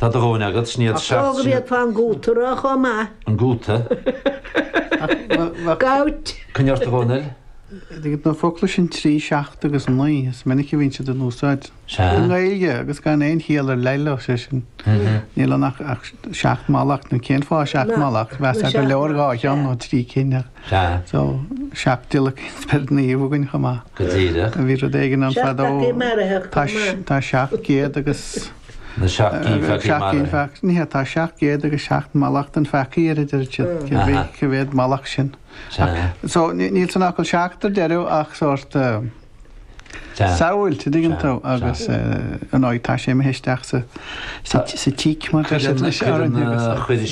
Tá do dhóthain agat, sin iad seacht Nó go bhféadfá an gúta a rá chomh maith. An gúta? Gout. Coinnigh ort, a Dhónaill. Ar ndóigh na focla sin trí, seacht agus a naoi, is minic a bhíonn siad in úsáid i nGaeilge agus gan aon chiall ar leith leo, sé sin, níl ann ach seacht mallacht, nó cén fáth seacht mallacht, mheasfá gur leor dhá cheann nó trí cinn. Sea. So, seacht dtíolacadh an Spioraid Naoimh againn chomh maith. Go díreach. Bhí rud éigin ann fadó. Seacht gceannpheacaí marfacha chomh maith. Tá seacht gcéad agus. Na seacht gceannpheacaí marfa. Seacht gceannpheacaí. Ní hea, tá seacht gcéad agus seacht mallacht an pheacaigh air a deir siad. Cé mhéad mallacht sin? Sea. So, níl san fhocal seacht ar deireadh ach sórt. Samhail, an dtuigeann tú, agus ar ndóigh tá sé im' theist ach sa sa tíc mar deir siad leis ar an chuir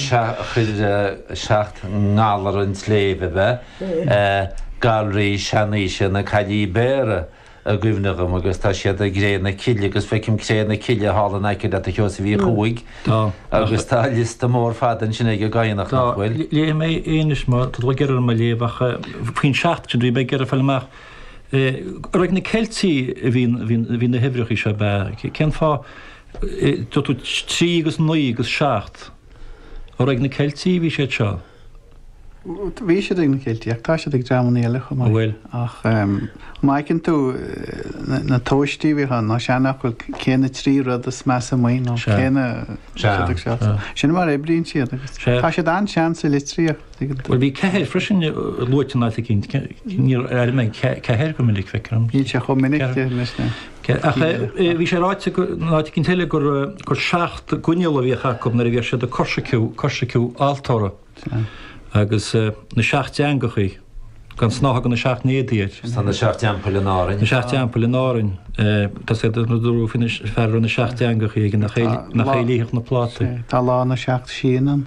chuir seacht ngalar an tsléibhe a bheith galraí seanaoise na Caillí Béarra i gcuimhne dhom agus tá siad i gCré na Cille agus feicim Cré na Cille thall in aice leat a Sheosaimh Uí Chuaig agus tá liosta mór fada ansin ag an gCadhnach, nach bhfuil? Léifidh mé é anois má tá tú ag iarraidh orm é a léamh ach faoin seacht sin bhí mé ag iarraidh a fháil amach. Arbh ag na Ceiltigh a bhí na huimhreacha seo, ab ea? Cén fáth, dúirt tú trí agus naoi agus seacht. Arbh ag na Ceiltigh a bhí siad seo? Bhí siad ag na Ceiltigh ach tá siad ag dreamanna eile chomh maith. Bhuel. Ach má fheiceann tú na tomhaistí a bhíodh ann, nó seanfhocal, cé na trí rud is measa amuigh nó cé na. Sea. Sin mar a oibríonn siad. Tá siad an-sean sa litríocht. Bhí ceathair freisin luaite in áit eicínt. Níor airigh mé ceathair go minic, feictear dom. Níl sé chomh minic sin, leis, na. Ach bhí sé ráite in áit eicínt eile gur seacht gcoinneal a bhíodh acu nuair a bhíodh siad ag coisreacadh, coisreacadh altóra. Agus na seacht dteangachaí, gan snáithe de na seacht n-éadaí air. Tá na seacht dteampaill in Árainn. Na seacht dteampaill in Árainn. Tá sé, dúradh faoin té a bhfuil na seacht dteangachaí aige, nach é a lífeadh na plátaí. Tá lá na seacht síon ann.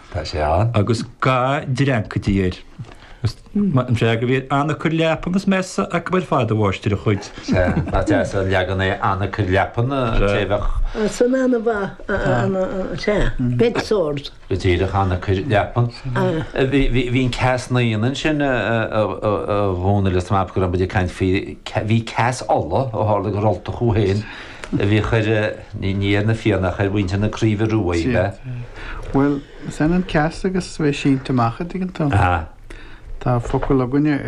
Tá sé ann. Agus ga dreancaidí air. Is maith an freagra a bhí air, Anacair leapan is mesa acu ar fad, a mháistir, a chuid. Sea. Nach deas an leagan é, Anacair leapan, an té a bheadh. Sin an-mhaith. Sea. Bed sores. Go díreach, Anacair leapan. Bhí an Ceas Naíon ansin, a Dhomhnaill, is maith go raibh muid ag caint faoi, bhí Ceas Uladh, ó tharla gur Ultach thú féin. Bhí chuir, ní, ní ar na Fianna ach ar mhuintir na Craoibhe Ruaidhe, le. Sea. Bhuel, is ionann ceas agus bheith sínte amach, an dtuigeann tú. Tá focal againne ar.